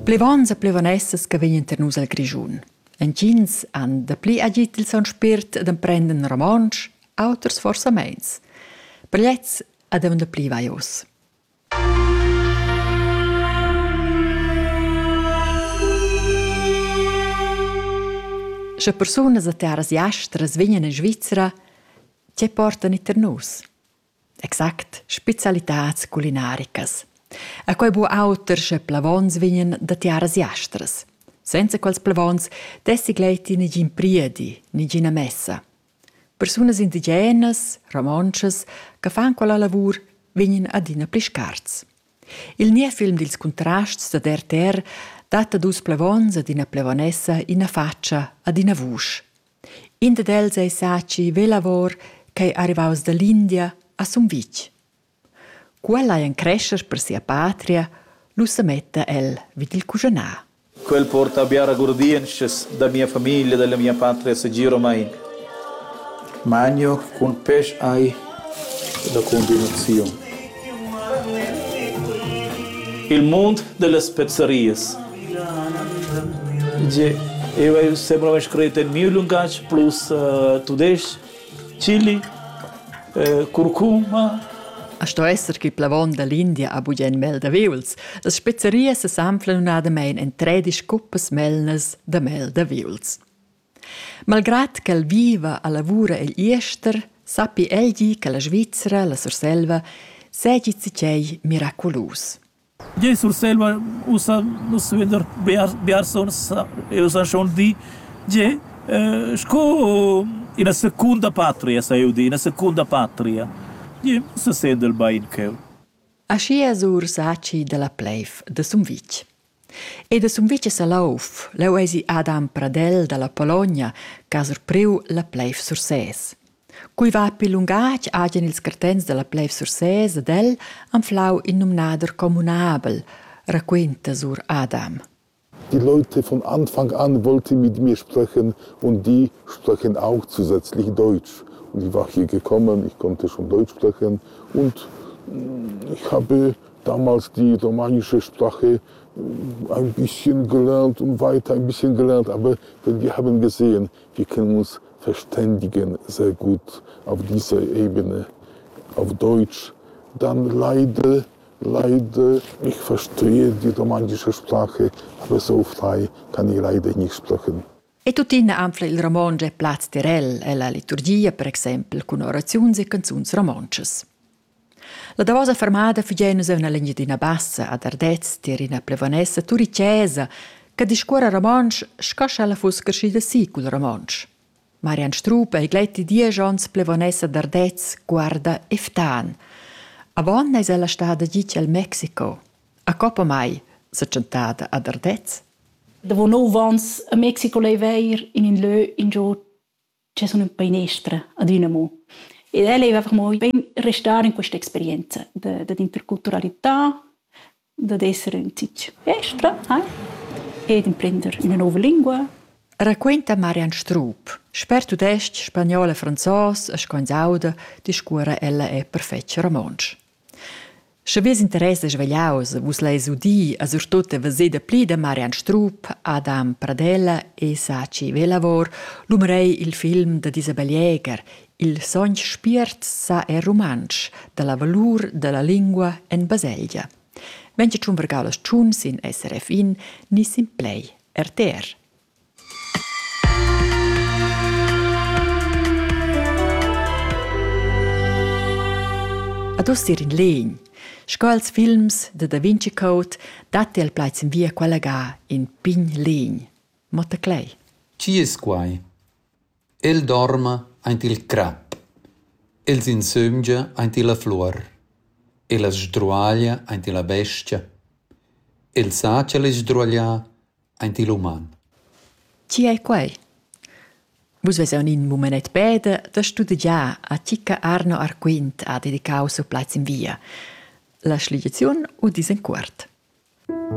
Plevons e plevonessas che vegnan tar nus al Grischun. Entgins han dapli agit il son spirt d'emprender romontsch, auters forsa meins. Per gliez ad un pli vaios. Sche persunas da terras jastras vegnan in Svizzera, ti portan i tar nus. Exact, specialitads culinaricas. E quei bu auter sche plevons vegnan da tiaras jastras. Senza quels plevons dessi gleiti negin priedi, negina messa. Persunas indigenas, romontschas, che fan quella lavur vegnan adina pli scarts. Il niev film dils Contrasts da RTR dat a dus plevons ad ina plevonessa ina faccia ad ina vusch. In dad els ei Saci Velavor ch'ei arrivaus dall'India a Sumvitg. Cu el ei en crescher per sia patria, lu semetta el vid il cuschanar. Quel porta biara gurdientschas da mia famiglia, dalla mia patria segiromein. Magno cun pesch ei la combinaziun. Il mund dellas spezzerias Gie, eu hai sempre mai scrit en miu lungatg plus uh, tudesc, chili, uh, curcuma. A sto esser che plavon dall'India ha bugen mel da viuls. Las spezzerias s'anflan unadamein en tredisch cuppas melnas da mel da viuls. Malgrad ch'el viva a lavura egl Iester, sappi egli che la Svizzera, la Surselva, segi tgei miraculus. Tgei Surselva ussa nus vender biars biars onns e ussa schon di tgei sco ina secunda patria sa jeu dir, ina secunda patria. Tgei sesendel bein cheu. Aschia es Ursacci dalla pleiv da Sumvitg. E da Sumvitg e Salouf, leu eisi Adam Pradel dalla Pologna ch'ha surpriu la pleiv Sursès. Quei va pil lungatg agen ils cartents dalla Pleif Sursès ed el anflau in numnader communabel, raquenta sur Adam. Die Leute von Anfang an wollte mit mir sprechen und die sprechen auch zusätzlich Deutsch. Und ich war hier gekommen, ich konnte schon Deutsch sprechen und ich habe damals die romanische Sprache ein bisschen gelernt und weiter ein bisschen gelernt, aber wenn die haben gesehen, che nus feständigen sehr gut auf dieser Ebene. Auf Deutsch, dann leider, leider, ich verstehe die romanische Sprache, aber so frei kann ich leider nicht sprechen. E tuttina anfla il romontsch e plaz terel ella liturgia, per exempel cun oraziuns e canzuns romontschas. La davosa fermada fugia nus en l'Engiadina Bassa ad Ardez tier ina plevonessa turicesa che discuora romontsch sco sch'ella fuss crescida si cul romontsch. Marian Strup ei gleiti diesch onns plevonessa d'Ardez, guarda e ftan. Avon eis ella stada gitg el Mexico. A coppa mai, sa tschentada ad Ardez. Davo nov ans a Mexico leiva eir in ün lö ingio che sun ün einestra adüna amo. Ed el eiva amo bain restar in questa experienza da dad interculturalità, dad esser ün zich estra ed imprender üna nouva lingua. Raquinta Marian Strup. Sper tudestg, spagnol e franzos e sco ins auda, discuora ella e per fetg romontsch. Sche Vus interessas vegliaus, vus leis udir a surtut e veser dapli da Marian Strup, Adam Pradella e Saci Velavor l'umerei il film da Isabel Jäger, Il sogn spiert sa è rumantsch, dalla valur dalla lingua en baselgia. Venga tschun vergau las tschun sin SRF in ni sin play RTR. Ad uss ir in legn. Sco als films de Da Vinci Code datti al plaids in via quella ga in pign legn. Motta Clay. Chi es quai? El dorma aint il crap. El s'insömgia aint illa fluor. El as sdruaglia aint illa bestia. El sacha le sdruagliar Aint il uman. Chi ei quei? Vus vesan in mumenet peda da studegiar a Cicca Arno Arquint ha dedicau siu plaz in via. La schliaziun udis en cuort.